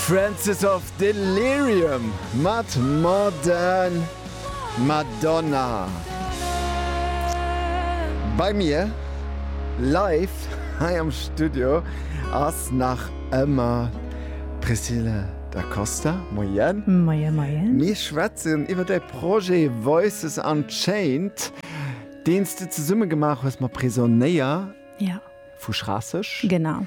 Francis of Delirium mat Modern Madonna bei mir live hei am Studio ass nach ëmmer d'Priscille Da Costa. Moien. Moien, moien. Mir schwätzen iwwer däi Projet Voices Unchained, deen s de zesumme gemaach hues mat Prisonnéier. Ja. Vu Schraasseg. Genau.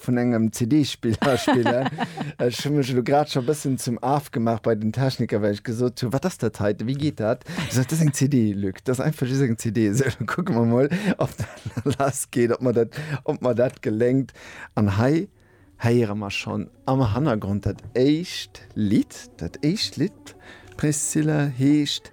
vun engem CD-Spiller spillen. Ech hunn mech elo grad scho bëssen zum Af gemaach bei den Techniker, well ech gesot hunn, wat ass dat hei, wéi geet dat? Ech sot, dat ass eng CD, Luc, dat ass einfach just eng CD. Esou, da kucke mer mol, ob dat lass geet, ob mer dat, ob mer dat geléngt. An hei héiere mer schonn am Hannergrond dat éischt Lidd. Dat éischt Lidd, Priscilla, heescht.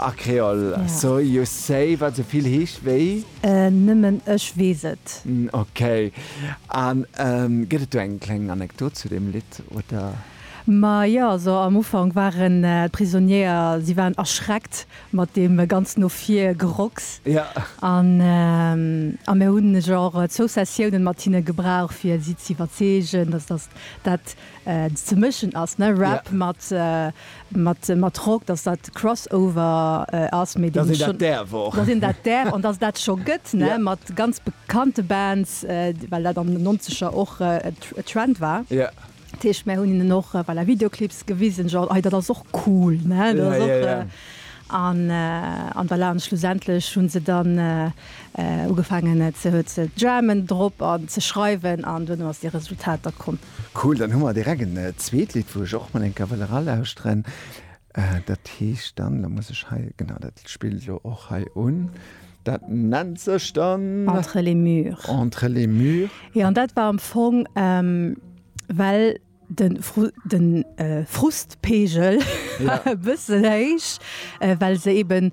A Kreol, so you say, wat sou vill heescht wéi. Nëmmen ech weess et. Ok. A gëtt et do eng kleng Anekdot zu deem Lidd, oder? Ma jo, also am Ufank waren d'Prisonniéer, si waren erschreckt mat deem ganz no vir Gerocks. A mir hunn genre Zoussessiounen mat hinne gebrauch, fir si z'iwwerzeegen, dass dat ze mëschen ass ne Rap mat mat mat Rock, dass dat Crossover ass, mee dass een dat däerf och, dass een dat däerf an dass dat scho gëtt ne mat ganz bekannte Bands, well dat an den nonzeger och e Trend war. Dat heescht mär hunn hinnen och voilà Videoclips gewisen, genre hei dat ass och cool ne dat ass och an an voilà an schlussendlech hunn se dann ugefaangen ze ze jammen drop an ze schreiwen an duerno ass dee Resultat da komm. Cool, dann hu mer direkt en zweet Lidd, wou ech och mol eng Kéier wëll eralauschteren. Dat heescht dann, da muss ech hei, genau, dat spillt elo och hei un, dat nennt sech dann. Entre les murs. Entre les murs. Jo, an dat war am Fong, well de Frustpegel war e bëssen héich, well se eeben